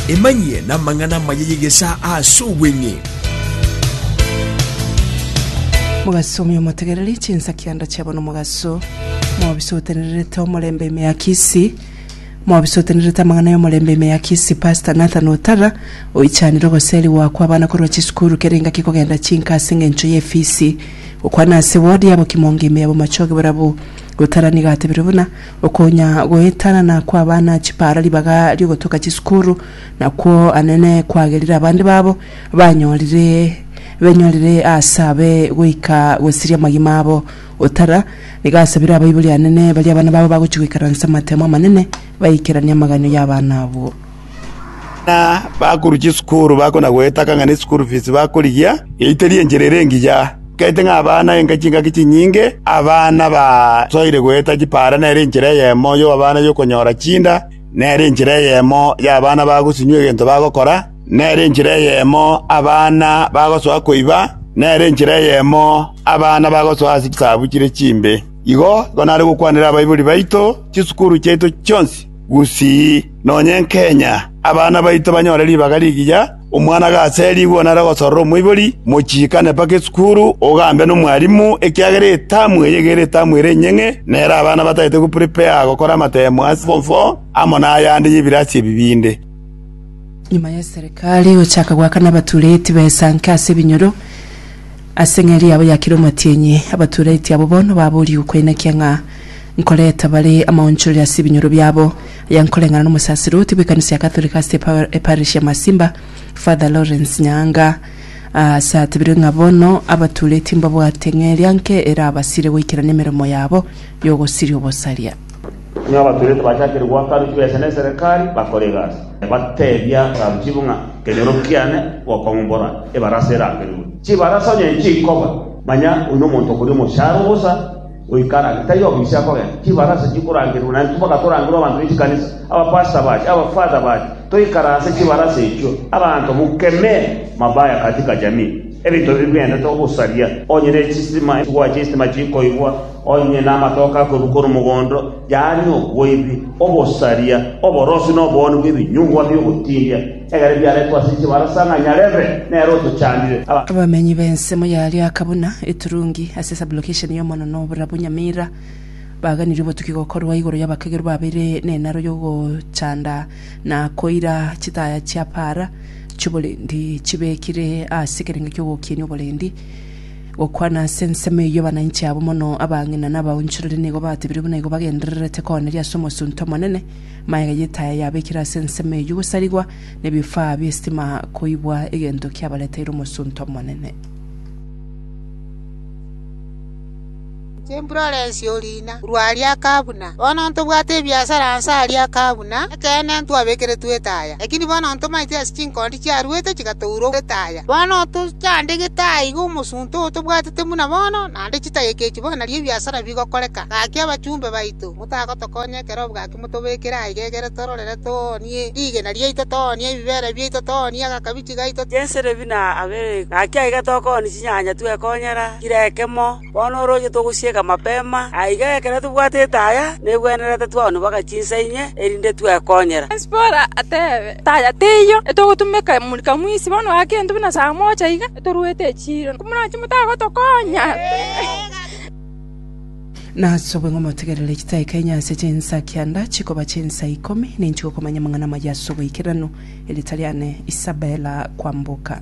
Emanyie namang'ana amaya y'egesaa aase obweng'e. Mogaso omuya omotegereri, chinsakianda chiabo nomogaso, mobisotenererete omorembe ime ya Kisii, mobisotenererete amang'ana y'omorembe ime ya Kisii Pastor Nathan Otara oichanire ogoseri goakwa abana korwa chisukuru kere engaki kogenda chinka ase eng'encho ye efisi gokwana ase ward yabo Kimonge ime ya bomachoge borabwo Otara nigo atebirie buna Okonya goetanana kw'abana chipaara ribaga ri'ogotoka chisukuru nakwo anene kwagerire abande babo banyorire benyorire aase abe goika gosiria amagima abo otara. Nigo asabire abaibori anene baria abana babo bagochia goikaransa amatemo amanene baikeranie amaganio y'abana abwo. Buna bakorwa chisukuru bakona goetaka ng'a ne school fees bakorigia, yaiteria enchera ere engiya. Etaete ng'a abana enka chingaki chinyinge, abana basoire goeta chipara nere enchera eyemo y'abana y'okonyora chinda, nere enchera eyemo y'abana bagosinywa egento bagokora, nere enchera eyemo abana bagosoa koiba, nere enchera eyemo abana bagosoa ase chisabu chire chimbe. Igo, igo nare gokwanera abaibori baito chisukuru chiaito chionsi. Gusii, nonya enkenya, abana baito banyore ribaga rigiya, omwana gaserigwe onare gosorora omoibori, mochiikane mpaka esukuru, ogambe nomwarimu, ekiagera etamu eye egere etamu ere enyeng'e, nere abana batagete goprepare gokora amatemo ase form four, amo nayande y'ebirasi ebi binde. Nyuma ya Serikali gochaka goakana abatureti b'esanke ase ebinyoro, Ase eng'eria yabo ya kera omatienyi, abatureti abo bono baboorigwe koinakia ng'a nkoreta bare amaonchorero ase ebinyoro biabo. Aya nkoreng'ana n'omosaserdoti bw'ekanisa ya Katoliki ase eparish ya Masimba, Father Lawrence Nyaanga, aase atebirie ng'a bono abatureti mbabwate eng'eria nke erabasire goikerania emeremo yabo y'ogosiria obosaria. Nigo abaturete bachakire goaka aruchwe ase neserekari, bakore egasi, bateebia Saruchibu ng'a ekenyoro kiane gokong'umbora ebarasa erangerirwe. Chibarasa onye nchikoba, manya oyio nomonto okoria omocharo obosa, goika arange taiyo obo ise akogenda. Chibarasa chikorangerirwe, na intwe mpaka torangerwe abanto be chikanisa, abapastor bache, abafather bache, toikare ase chibarasa echio. Abanto mokemee mabaya katika jamii. Ebinto ebi biaendete ogosaria, onye ne chistima, gwache istima chikoigwa, Onye namatoke akorwa korwa mogondo, yaani oboibi, obosaria, oborosi na obooni bw'ebinyugwa bi'ogotiiria, egere biaretwe ase chibarasa ng'a nyarebe nere otochandire. Abamenyi b'ensemo ya Lyaka buna Iturungi ase sublocation ya Omonene oborabu Nyamira, baganirie obotuki gokorwa igoro y'abakagerwa babeire nenaro y'ogochanda na koira chitaya chia para chi'oborendi chibekire ase ekerengo ki'ogokinia oborendi. Gokwana ase ensemo eyio abananchi abwo mono, abang'ina na abaonchorori nigo batebire buna igo bagendererete kooneria ase omosunte omonene, maega y'etaya yabekire ase ensemo eyio gosarigwa, na ebifaa bi'esitima koibwa egento kiabareteire omosunte omonene. Chimburorensi o riina korwa aria akabuna, bono ntobwate ebiasara nse aria akabuna, ekeene ntwabekeretwe etaya, lakini bono ntomaite ase chinkondi chiaruete chigatourwa etaya. Bono tochandegete aiga omosunte oo tobwatete buna bono, naende chitageka echi bono nario ebiasara bigokoreka. Gaki abachumbe baito, motagotokonya ekero gaki motobekere aiga egere tororere toonie rigena riaito, toonie ebibere biaito, toonie agakabichi gaito, Chenserebi na aberegu, gaki aiga tokoonia chinyanya twekonyera kera ekemo. Bono orooche togosieka mapema aiga ekero tobwatete aya negwenerete twaonibwaga chinsa inye, erinde twekonyera.” Zipora atebe, “Taya teiyo, etogotumeka morika mwisi bono ake intwe buna saa mocha iga etoruete echiiro, komoranche motagotokonya.” Nasobwe ng'a omotegerere chitaika inye ase chinsa kianda chikoba chinsa ikomi, ninchigokomanya amang'ana amaya ase ogoikeranu, erieta riane Isabela kwamboka.